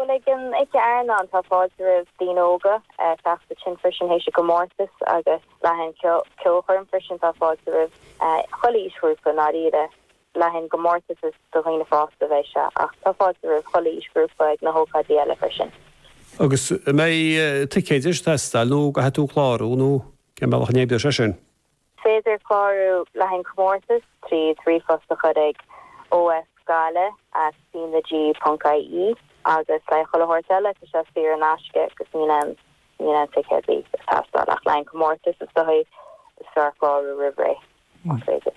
Bhuel, ag an oíche airneáin tá fáilte roimh daoine óga teacht ansin freisin th'éis an chomórtais agus le haghaidh an cheolchoirm freisin tá fáilte roimh chuile aoisghrúpa, i ndáiríre, le haghaidh an chomórtais is do dhaoine fásta a bheidh sé ach tá fáilte roimh chuile aoisghrúpa ag na hócáidí eile freisin. Agus an mbeidh ticéid ag teastáil nó go caithfidh tú clárú nó cén bealach a n-oibreoidh sé sin? féidir clárú le haghaidh an chomórtais trí ríomhphost a chur ag oifigealain ag cnag ponc ie agus le haghaidh chuile shórt eile tá sé saor in aisce agus níl aon níl aon ticéadaí ag teastáil ach le haghaidh an chomórtais is dóigh is fearr clárú roimh ré más féidir.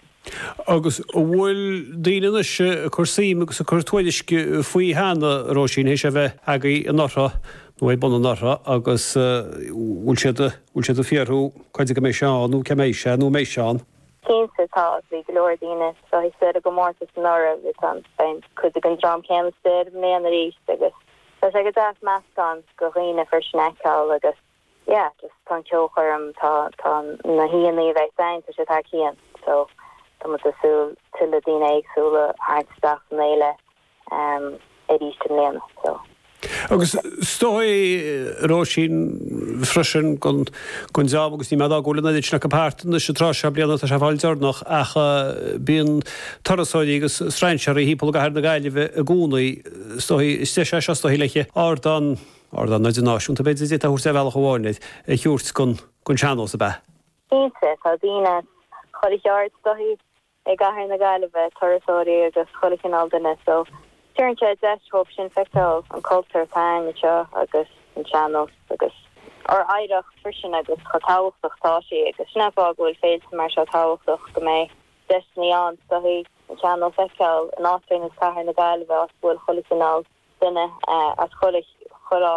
Agus an bhfuil daoine anois ag cur suim agus ag cur tuairisc faoi cheana, Róisín, th'éis é a bheith agaibh anuraidh? nó ag baint an ortha agus bhfuil siad, bhfuil siad ag fiafraí, cén uair a bheidh sé ann nó cá mbeidh sé nó an mbeidh sé ann. Cinnte, tá ach bhí go leor daoine sásta leis an gcomórtas anuraidh agus ann, cuid den dream céanna ar ais i mbliana arís agus tá sé go deas meascán de dhaoine freisin a fheiceáil agus yeah, just tá an ceolchoirm, tá, tá na haíonna a bheidh ann, tá siad thar cionn so tá muid ag súil tuilleadh daoine éagsúla a tharraingt isteach san fhéile arís i mbliana. Agus is dóichí, a Róisín, freisin go ndéanann agus ní mé dá gcuala mé an oiread sin acu thart anois an tráth seo bliana, tá sé ag fáil deireanach, ach bíonn turasóirí agus strainséaraí thimpeall i gcathair na Gaillimhe i gcónaí. Is dóichí, is deis é seo, is dóichí, le ardán, ardán idirnáisiúnta b'fhéidir, a d'fhéadfá a thabhairt ar bhealach amháin air, a thabhairt don sean-nós ab ea? Cinnte, tá daoine as chuile cheard, is dóichí, i gCathair na Gaillimhe, turasóirí agus chuile chineál duine so tugann sé deis dhóibh sin feiceáil an cultúr atá againn anseo agus an sean-nós agus. ár oidhreacht freisin agus chomh tábhachtach atá sí agus sin é fáth go bhfuil féilte mar seo tábhachtach go mbeidh deiseannaí ann, is dóichí, an sean-nós a fheiceáil in áit ar nós Cathair na Gaillimhe áit go bhfuil chuile chineál duine as chuile chúlra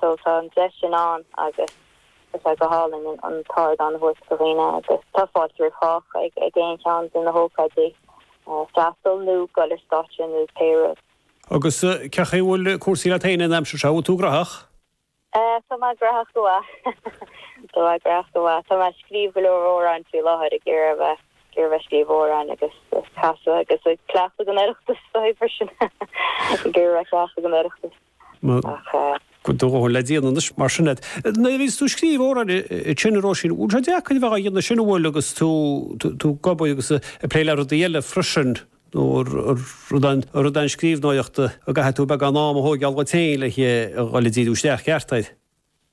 So tá an deis sin ann agus tá sé go hálainn an t-ardán a thabhairt do dhaoine agus tá fáilte roimh chách ag aon cheann de na hócáidí, freastal nó dul ar stáitse nó pé rud. Agus cén chaoi a bhfuil cúrsaí leat féin an aimsir seo, an bhfuil tú graitheach? Tá mé graitheach go maith. Tá mé graitheach go maith. Tá mé ag scríobh go leor amhráin faoi láthair, ag iarraidh a bheith, ag iarraidh a bheith ag scríobh amhráin agus ag casadh agus ag cleachtadh don Oireachtas freisin, ag iarraidh a bheith ag cleachtadh don Oireachtas. Ach. Le déanaí anois, mar sin de. Nuair a bhíos tú ag scríobh amhráin mar sin, a Róisín, an bhfuil sé deacair a bheith á dhéanamh sin, an bhfuil, agus tú ag obair agus ag plé le rudaí eile freisin, nó an rud é an scríbhneoireacht a gcaithfidh tú beagán ama a thógáil duit féin le dhul ag díriú isteach ceart air?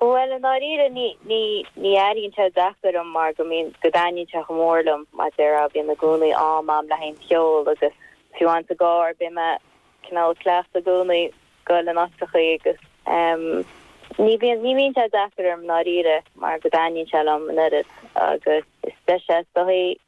Bhuel, i ndáiríre, ní, ní, ní éiríonn sé deacair dom mar go mbíonn, go dtaitníonn sé chomh mór liom, mar a déarfá, bím i gcónaí ag imeacht liom le haon cheol agus fiú sa gcarr, bím cineál ag cleachtadh i gcónaí ag goil in áiteachaí agus em ní bhíonn, ní bhíonn sé deacair orm i ndáiríre mar go dtaitníonn sé liom an oiread agus is deis é is dóigh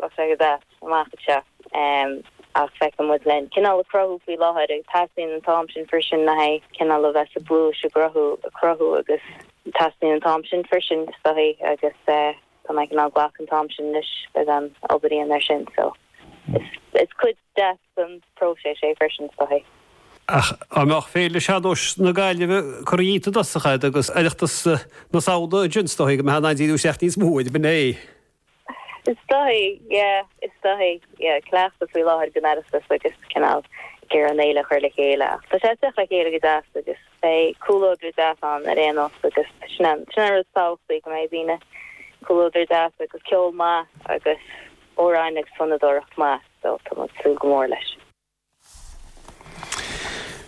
Tá sé ag teacht amach anseo. Ach caithfidh muid cineál a chruthú faoi láthair agus teastaíonn an t-am sin freisin le haghaidh cineál a bheith sa bpluais a gcruthú, ag cruthú agus teastaíonn an t-am sin freisin is dóigh agus tá mé cineál ag glacadh an t-am sin anois beagán obair a dhéanamh ar sin so is cuid deas den próiseas é freisin is dóigh. Ach dá mbeadh Féile Sean-nóis na Gaillimhe curtha dínn i dtosach agus Oireachtas na Samhna ansin is dóigh go mbeadh muid ag díriú isteach níos mó ar an bhfinné. Is dóigh, yeah. Is dóigh, yeah. Ag cleachtadh faoi láthair don Oireachtas agus cineál ag iarraidh an fhéile a chur le chéile. Ach tá sé ag teacht le chéile go deas agus beidh comhluadar deas ann ar aon nós agus sin an rud is tábhachtaí, go mbeidh daoine, comhluadar deas agus ceol maith agus amhráin agus fonnadóireacht mhaith. So tá muid ag súil go mór leis.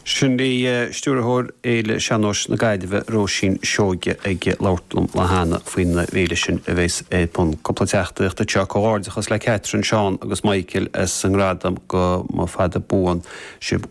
Sin agaibh Stiúrthóir Fhéile Sean-Nóis na Gaillimhe, Róisín Seoige ag labhairt liom cheana faoin bhféile sin a bheas ar bun cúpla seachtain ó seo. Comhghairdeachas le Catherine, Seán agus Michael as an ngradam. Go mba fada buan sibh.